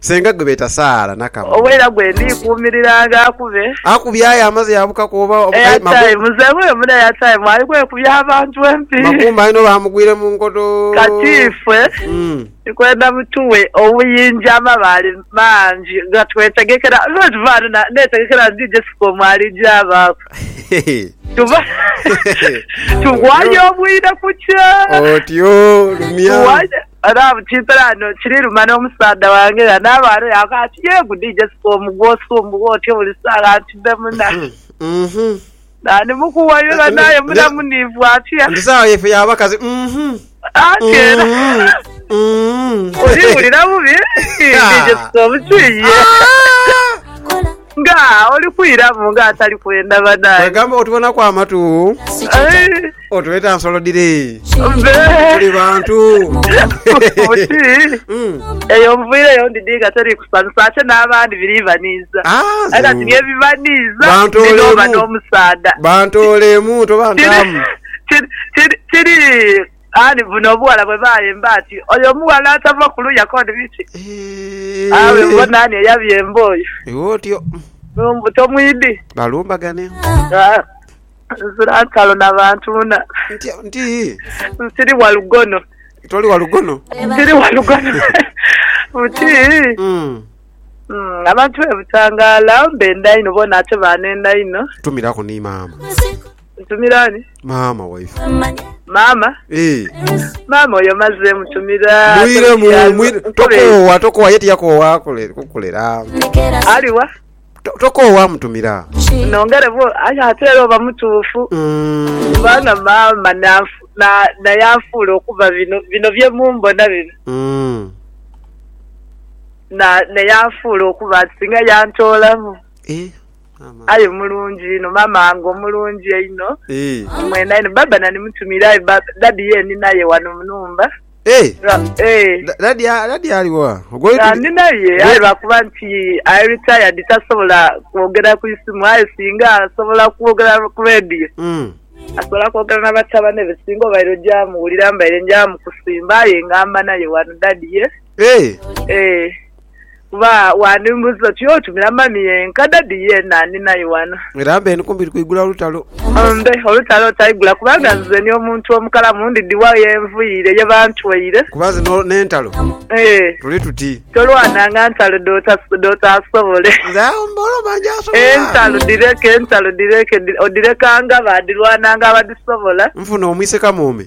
Senga gwe beeta Saala Nakamu. Oweira gwe ndi kuumiriranga akube. Akubye aye amaze yabukaku oba oba aye Makumba. Airtime muzeeyi oyo mune airtime ali kwekubya abantu empi. Makumba aye no bamugwire mu nkoto. Kati ifwe tukwenda mutuwe obuyinja amabaale mangi gatwetegekera nze bwetuva ghano netegekera nti DJ Sikomu alija abaaku tuva tugwayo obwire kukya. Otyo lumya. Adamu kimpelano kiri luma n'omusaadha wange era n'abaana yaakoba ati, Yee gudi Jessica omu gw'osumbugha otyo buli saagha nti mbe muna. Naani mukuwayula n'aye muna muniivu atya? Nti saagha yaife ya bakazi. Anti era oliwulira bubi, Dii Jessica omukiiye. Nga oli kwiramu nga atali kwenda banaye. Kwegamba otubonaku amatu. Otweta nsolo dhiri. Tuli bantu. Buti hmm. eyo nvwire yo ndidinga teri kusanisa ate n'abandi biri baniiza. Ah, ate kati bye bibaniiza n'oba n'omusaadha. Bantu olemu toba ntamu. Kiri kiri kiri Aali buno obughala bwe baayemba ati, Oyo omughala atava ku luya koni biki? Awe bbo naani eyabyemba oyo? Iwe otyo. Mu mbuto mwidhi. Balumbagane. Aa, Nzira ntalo na bantu na. Ntya, nti. Nsiri wa lugono. Toli wa lugono? Nsiri wa lugono. Buti. Mm. Mm, abantu be Butangala benda inho bona ate baanenda inho. Tumiraku ni maama. Ntumira ani? Maama waife. Maama? Ee. Maama oyo maze mutumira. Mwire mu, mwire. Tokoowa, tokoowa, ye tiyakoowa kukulera. Aliwa? Tokoowa mutumira. Nongere bwo, ayo ate era oba mutuufu. Mm. Kubanga maama naye anfuula okuba bino, bino bye mumbona bino. Mm. Na, naye anfuula okuba nti singa yantoolamu. Ee. Eh? Aye mulungi inho mama wange omulungi einho omwena inho baba nani mutumire aye daddy ye ninaye wano munumba nga ninaye aye lwakuba nti ali retired tasobola kwogera kwisimu aye singa asobola kwogera ku radio asobola kwogera nabatabane be singa obaire oja muwulira mbaire nja mukusimba aye nga mba naye wano daddy ye. Kuba wandimbuuza oti, Oti Mulamani ye? Nkadadi ye naani naye wano? Era mbe ni kumpi kwigula olutalo. Mbe olutalo otaigula, kubanga nze ni omuntu omukalamu, ndidhi wa ye nviire, ye bantweire? Kuba nze n'entalo tuli tuti. Tolwananga ntalo dh'otaasobole. Nze agho mba olwo mba ngyasobola. Entalo dhireke, entalo dhireke, odhirekanga baadhirwananga abadhisobola. Nfune omwiseka mwome.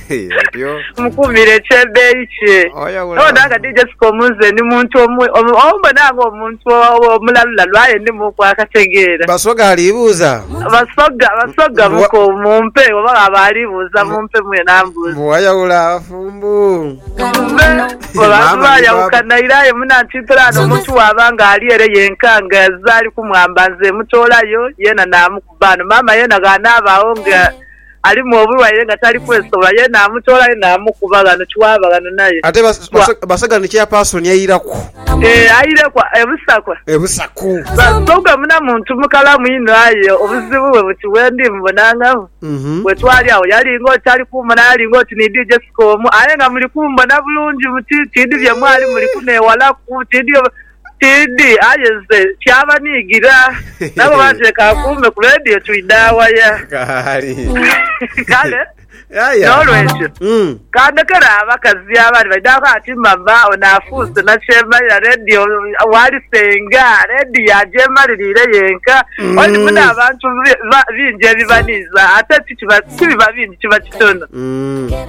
Mukuumire ekyebeeyi kye. Nobona nga DJ Sikomu nze ndi muntu ombona nga omuntu omulalulalu aye ndimuku akategeera. Basoga alibuuza. Basoga, Basoga muko mumpe oba ghaba alibuuza mumpe mwene ambuuze. Mbu wayawula abafumbo. Abantu bayawukana ira aye munantwipira ghano omuntu bwaba nga ali ere yenka nga azira alikumwamba nze mutoolayo yena namukoba. Bano maama yena ghanaabagho nga alimu obulwaire nga tali kwesobola, ye naamutoolayo naamukuba ghano kiwaaba ghano naye. Ate basaga ni chairperson aireku. Eeh aireku e Busakwa. E Busaku. Basoga muna muntu mukalamu inho aye obuzibu bwe buti wendi mubonangagho bwe twali agho yali ng'oti tali kumbona yali ng'oti ni dhi Jessica omu aye nga muli kumbona bulungi buti tidhi bye mwali muli kuneewalaku tidhi Tidhi, aye nze kyaba niigira nabo bantu leka akuume ku leediyo twidha waya? Kaali. Kale Yaya. n'olwekyo Mm. kandekere abakazi abandi baidhako ati mama ono afuuse nakyemalira leediyo wali senga leediyo agyemaliriire yenka oli muno abantu bi- ba- bingi ebibaniiza ate ti kiba- tibiba bingi kiba kitono. Mm.